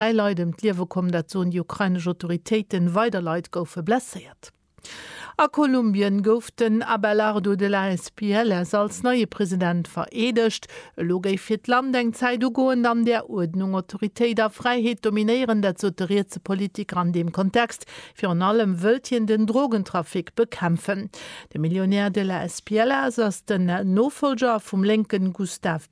Dräi Leit ëm d'Liewe komm, dat soen déi ukrainesch Autoritéiten. Weider Leit goufe blesséiert. A Kolumbien gouf den Abelardo de la Espielles als neie President vereedegt. Elo géif fir d'Land eng Zäit ugoen, an där Uerdnung, Autoritéit a Fräiheet dominéieren. Dat sot de rietse Politiker an deem Kontext. Virun allem wëllt hien den Drogentrafic bekämpfen. De Millionär de la Espielles ass den Nofollger vum lénke Gustave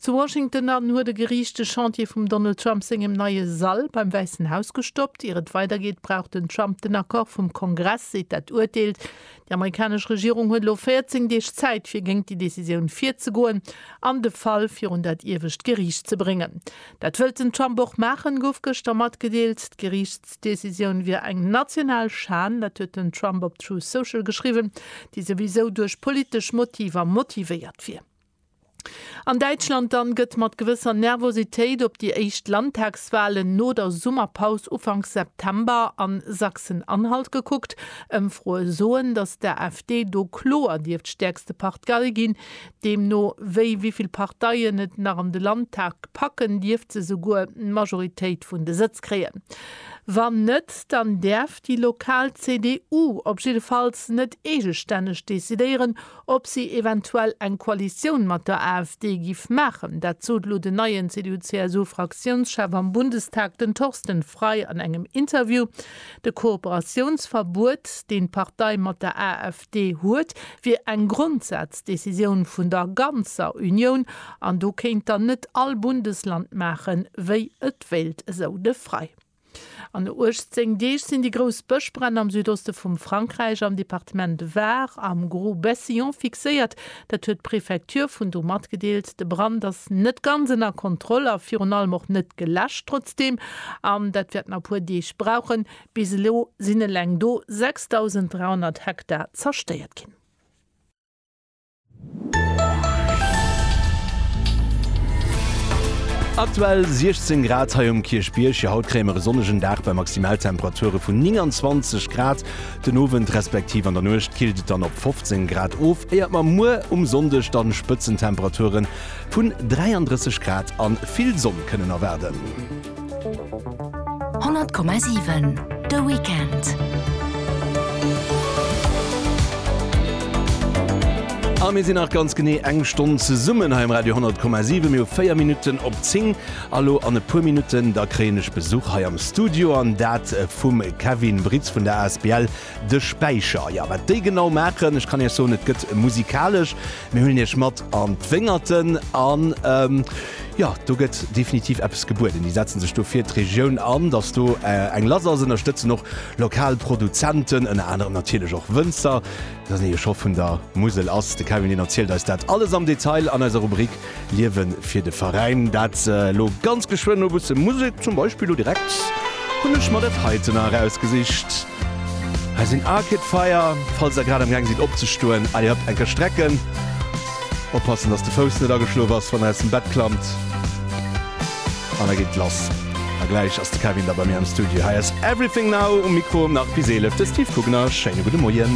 Zu Washington an huet e Geriicht de Chantier vum Donald Trump sengem neie Sall beim Wäissen Haus gestoppt. Ier et weidergeet, brauch den Trump den Accord vum Kongress, seet dat Urteel. Déi amerikanesch Regierung huet elo 14 Deeg Zäit, fir géint déi Decisioun virzegoen an de Fall virun dat iewescht Geriicht ze bréngen. Dat wëllt den Trump och maachen, gouf gëschter matgedeelt. D'Geriichtsdecisioun wier eng national Schan, dat huet den Trump op Truth Social geschriwwen, déi souwisou duerch politesch Motiver motivéiert wier. An Däitschland dann gëtt mat gewësser Nervositéit op déi éischt Landtagswalen no der Summerpaus ufanks September a Sachsen-Anhalt gekuckt. Ëmfroe soen, datt d'AfD do kloer dierft stäerkste Partgei ginn. Deemno wéi wéivill Parteien et nach an de Landtag packen, dierft se souguer d'Majoritéit vun de Sëtz kréien. Wann net, dann däerf déi lokal CDU op jiddefalls net eegestänneg decidéieren, Ob si eventuell eng Koalitioun mat der AfD giff maachen, dat sot elo den neien CDU-CSU-Fraktiounschef am Bundestag, den Thorsten Frei an engem Interview. De Kooperatiounsverbuet, deen d'Partei mat der AfD huet, wier eng Grondsaz-Decisioun vun der ganzer Unioun an do kéint dann net all Bundesland maachen, wéi et wéilt, esou de Frei. An 18 Deeg sinn déi grouss Bëschbränn am Südoste vum Frankräich am Departement Var am Gros-Bessillon fixéiert. Dat huet d'Prefecture vun do matgedeelt. De Brand ass net ganz ënner Kontroll a virun allem och net geläscht. Trotzdeem, an dat wäert nach e puer Deeg brauchen, bis elo sinn eleng do 6.300 Hektar zerstéiert ginn. Aktuell 16 Grad hei um Kierchbierg. Jo, haut kréie mer e sonnegen Dag bei Maximaltemperature vun 29 Grad. Den Owend respektiv an der Nuecht killt et dann op 15 Grad of, éiert mer muer um Sonndeg dann Spëtzentemperature vun 33 Grad an vill Sonn kënnen erwaarden. 100,7 De Weekend. A mir sinn nach ganz genee eng Stonn zesummen hei um Radio 10,7. Mir hu 4 Minutten op 10. A lo an e puer Minutten, da kréien ech Besuch hei am Studio, an dat vum Kevin Britz vun der asbl De Späicher. Jo, wat déi genau maachen, ech kann Iech soen, et gëtt musikalesch. Mir huelen Iech mat an d'Wéngerten an jo, do gëtt definitiv eppes gebueden. Déi setzen sech do fir d'Regioun an, datt do eng lass ass, ënnerstëtzen och lokal Produzenten, ënner anerem natierlech och Wënzer. Datt ee Schof vun der Musel ass, de Kevin deen erzielt eis dat alles am Detail an eiser Rubrik Liewe fir de Veräin. Dat elo ganz geschwënn. No e bësse Musek zum Beispill, lo direkt hunn ech mer dat heiten erausgesicht. Hei sinn Arcade Fire, falls der grad am Gang sidd opzestoen, allez hop, eng Kéier strecken. Oppassen, dass de Fouss net ageschlof ass, wann der aus dem Bett klammt. An da geet et lass. A gläich ass de Kevin da bei mir am Studio. Hei ass Everything Now um Mikro, nach bis 11 de Steve Kugner. Schéine gudde Moien.